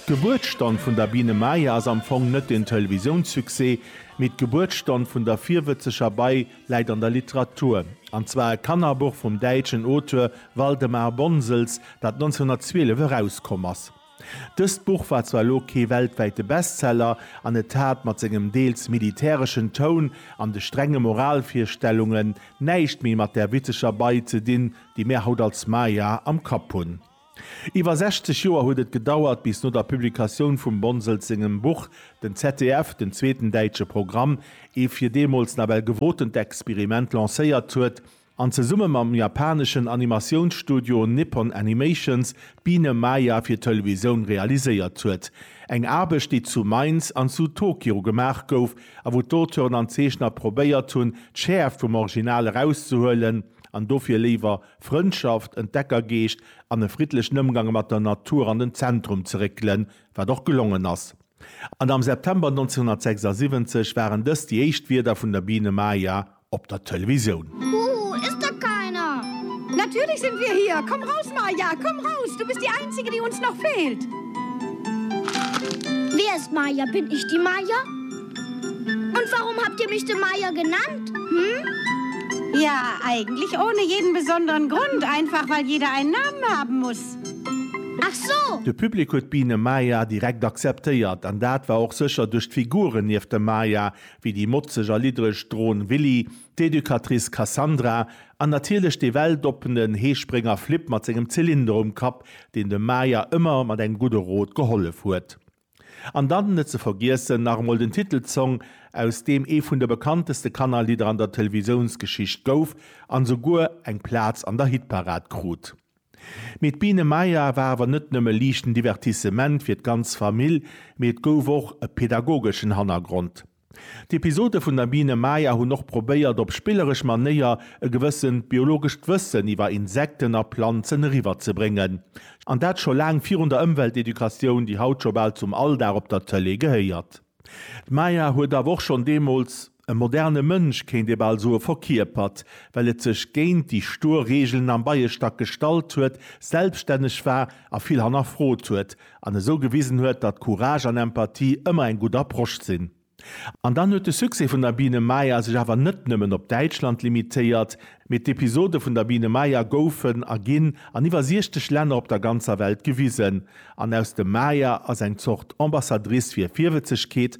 D'Gebuertsstonn vun der Biene Maya ass am Fong net den Televisounsuccès, mee d'Gebuertsstonn vun der virwëtzeger Bei läit an der Literatur, an zwar e Kannerbuch vum däitschen Auteur Waldemar Bonsels, dat 1912 erauskomm ass. Dëst Buch war zwar elo kee weltwäite Bestseller, an et hat mat sengem deels militäreschen Toun an de strenge Moralvirstellungen näischt méi mat där witzeger Bei ze dinn, déi mär haut als Maya am Kapp hunn. Iwwer 60 Joer huet et gedauert, bis no der Publikatioun vum Bonsels sengem Buch den ZDF den zweeten däitsche Programm, ee fir deemools nawell gewotent Experiment, lancéiert huet an zesumme mam japaneschen Animatiounsstudio Nippon Animations d'Biene Maya fir d'Televisoun realiséiert huet. Eng Aarbecht, déi zu Mainz an zu Tokio gemaach gouf a wou d'Auteuren an d'Zeechner probéiert hunn, d'Schäerft vum Original erauszehuelen an dofir léiwer Frëndschaft, Entdeckergeescht an e friddlechen Ëmgang mat der Natur an den Zentrum ze réckelen, wat och gelongen ass. An am September 1976 waren dëst déi éischt Wierder vun der Biene Maya op der Televisioun. Buh, ist da keiner? Natürlich sind wir hier! Komm raus, Maya, komm raus! Du bist die Einzige, die uns noch fehlt! Wer ist Maya? Bin ich die Maya? Und warum habt ihr mich den Meier genannt? Hm? Ja, eigentlich ohne jeden besonderen Grund, einfach weil jeder einen Namen haben muss. Ach so! De Public huet d'Biene Maya direkt akzeptéiert, an dat war och sécher duerch d'Figuren nieft der Maya, wéi déi motzeg a liddreg Dron Willy, d'Educatrice Cassandra an natierlech dee weltoppenen Heesprénger Flip mat sengem Zylinder um Kapp, deen dem Maya ëmmer mat engem gudde Rot gehollef huet. An dann, net ze vergiessen, nach emol den Titelsong, aus deem ee vun de bekannteste Kannerlidder an der Televisiounsgeschicht gouf an esouguer eng Plaz an der Hitparad krut. Mee d'Biene Maya war awer net nëmme liichten Divertissement fir d'ganz Famill, mee et gouf och e pedagogeschen Hannergrond. D'Episode vun der Biene Maya hunn och probéiert, op spilleresch Manéier e gewëssent biologescht Wëssen iwwer Insekten a Planzen eriwwerzebréngen. An dat scho laang virun der Ëmweltedukatioun, déi haut scho bal zum Alldag op der Tëlee gehéiert. D'Maya huet awer och schonn deemools e moderne Mënsch, kéint ee bal soe, verkierpert, well et sech géint déi stuer Reegelen am Beiestack gestallt huet, selbststänneg war a vill hannerfrot huet, An esou gewisen huet, datt Courage an Empathie ëmmer eng gutt Approche sinn. An dann huet de Succès vun der Biene Maya sech awer net nëmmen op Däitschland limitéiert, mee d'Episode vun der Biene Maya goufen a ginn an iwwer 60 Länner op der ganzer Welt gewisen. An aus dem Maya ass eng Zort Ambassadrice fir Virwëtzegkeet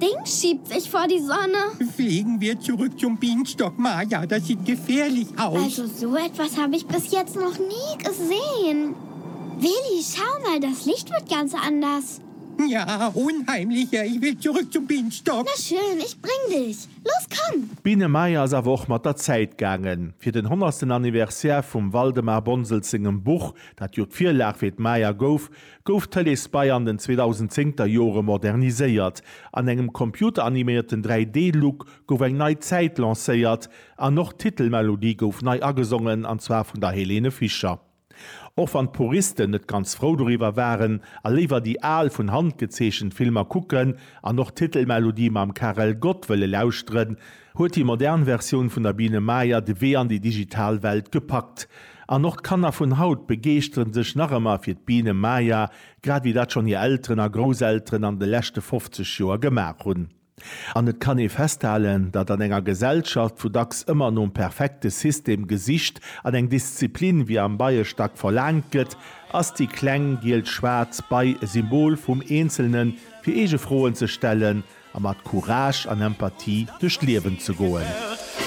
Deng schiebt sech vor die Sonne. Fliegen wir zurück zum Bienenstock, Maja, das sieht gefährlich aus. Also so etwas hab ich bis jetzt noch nie gesehen. Willi, schau mal, das Licht wird ganz anders. Ja, unheimlicher, ich will zurück zum Bienenstock. Na schön, ich bring dich. Los, komm! D'Biene Maja ass awer och mat der Zäit gaangen. Fir den honnertsten Anniversaire vum Waldemar Bonsels sengem Buch, dat jo d'Virlag fir d'Maja gouf, gouf Tëlees Bay an den 2010 er Jore moderniséiert. An engem computeranimierten 3D Look gouf eng nei Zäit lancéiert an och d'Titelmelodie gouf nei agesongen an zwar vun der Helene Fischer. Och wann d'Puristen net ganz frou doriwwer waren a léiwer déi al vun Hand gezeechent Filmer kucken an och d'Titelmelodie mam Karel Gott wëlle lauschteren, huet déi modern Versioun vun der Biene Maya de Wee an déi digital Welt gepackt. An och d'Kanner vun haut begeeschtere sech nach ëmmer fir d'Biene Maya, grad wéi dat schonn hir Elteren a Grousselteren an de leschte 50 Joer gemaach hunn. An et kann ee festhalen, datt an enger Gesellschaft, wou dacks ëmmer nom perfekte System gesicht an eng Disziplin wéi am Beiestack verlaangt gëtt, ass déi kleng giel-schwaarz Bei e Symbol vum eenzelne fir eege Froen ze stellen a mat Courage an Empathie duerch d'Liewen ze goen.